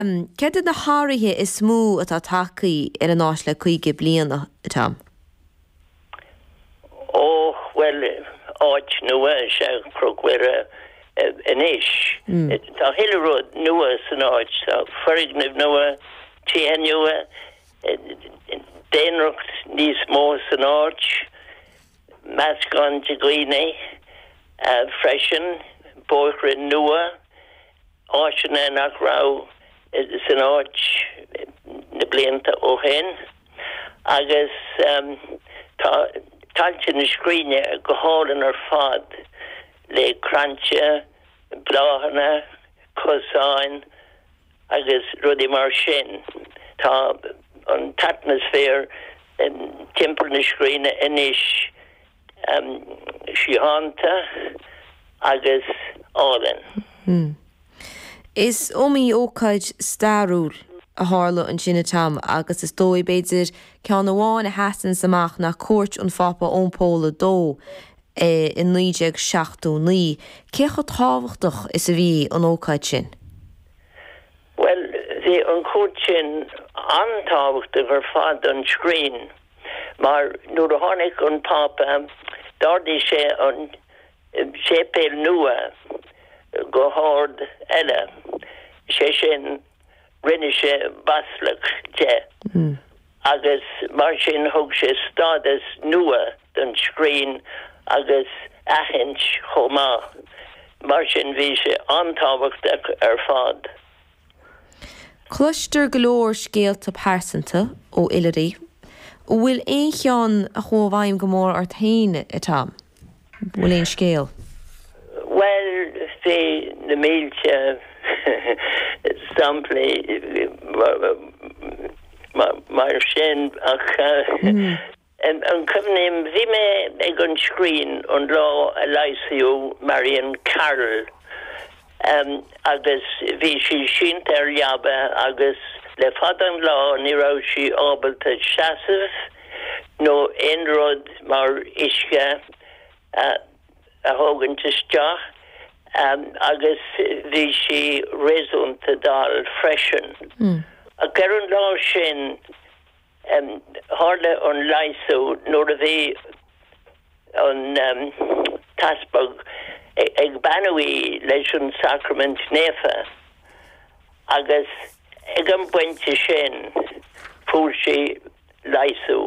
Céard iad na hathruithe is mó atá tagtha ar an áit le caoga bliain, Tom? Ó, bhuel, áit nua is ea Cnoc Mhuire anois. Tá chuile rud nua san áit. Tá foirgnimh nua, tithe nua, daonra níos mó san áit, meascán de dhaoine freisin, bóithre nua. áiteanna nach raibh san áit na blianta ó shin agus tá tailte na scríne go hálainn ar fad le crainnte, bláthanna, cosáin agus rudaí mar sin. Tá an t-atmaisféar timpeall na scríne anois síochánta agus álainn. Is iomaí ócáid stairiúil a tharla ansin, a Tom, agus is dóigh, b'fhéidir, ceann amháin a sheasanns amach ná cuairt an Phápa Eoin Pól a Dó i 1979. Cé chomh tábhachtach is a bhí an ócáid sin? Bhuel, bhí an chuairt sin an-tábhachtach ar fad don scrín. mar nuair a tháinig an Pápa d'ardaigh sé an séipéal nua go hord eile, sé sin, rinne sé baisleac de, agus mar sin thug sé stádas nua don scrín agus aithint chomh maith. Mar sin bhí sé an-tábhachtach ar fad. Cloistear go leor scéalta pearsanta ó oilithrigh. An bhfuil aon cheann a chuaigh i bhfeidhm go mór ort féin, a Tom? An bhfuil aon scéal? Bhuel, tá na mílte samplaí mar sin ach. Á, cuimhním, Bhí mé ag an scrín an lá a leigheasadh Marion Carroll agus bhí sí sínte ar leaba agus le fada an lá ní raibh sí ábalta seasamh nó aon rud mar uisce a thógaint isteach agus bhí sí réasúnta dall freisin. Ach ar an lá sin Tharla an leigheasú nuair a bhí an t-easpag ag beannú í leis an Sacraimint Naofa agus ag an bpointe sin fuair sí leigheasú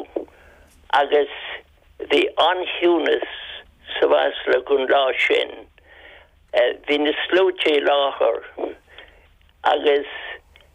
agus bhí an-chiúnas sa mBaisleac an lá sin. Bhí na sluaite i láthair agus.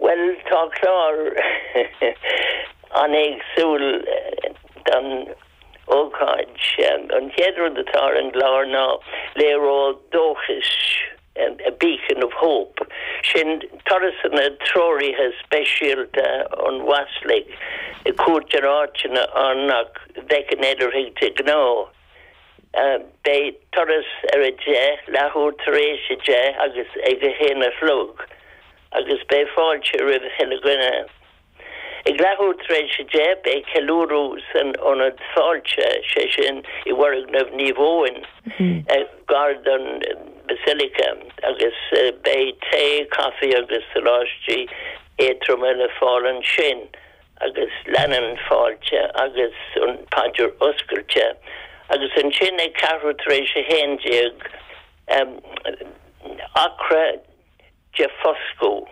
Bhuel, tá clár an-éagsúil don ócáid. An chéad rud atá ar an gclár ná léaró dóchais, a beacon of hope. Sin turasanna treoraithe speisialta ón Bhaisleac, ag cuairt ar áiteanna ann nach bhfeiceann oilithrigh de ghnáth. Beidh turas ar a 10, leathuair tar éis a 10 agus ag a 1 a chlog agus beidh fáilte roimh chuile dhuine. Ag leathuair tar éis a 10 beidh ceiliúradh san ionad fáilte, sé sin, i bhfoirgneamh Naomh Eoin, gar don Basilica agus beidh tae, caife agus soláistí éadtroma le fáil ansin agus leanann fáilte agus an paidir oscailte agus ansin ag ceathrú tar éis a haon déag acra de foscadh.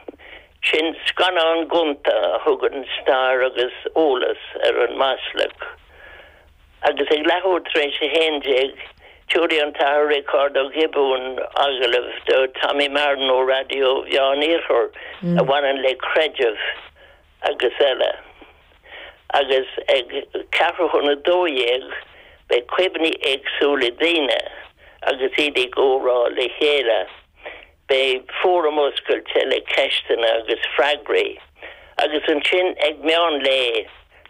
Sin scannán gonta a thugann stair agus eolas ar an mBaisleac. Agus ag leathuair tar éis a haon déag tiúrfaidh an tAthair Riocard Ó Giobúin agallamh do Tommy Marren ó Raidió Mheán Iarthar a bhaineann le creideamh agus eile. Agus ag ceathrú chun a dó dhéag beidh cuimhní éagsúla daoine agus iad ag comhrá le chéile. Beidh fóram oscailte le ceisteanna agus freagraí. Agus ansin ag meán lae,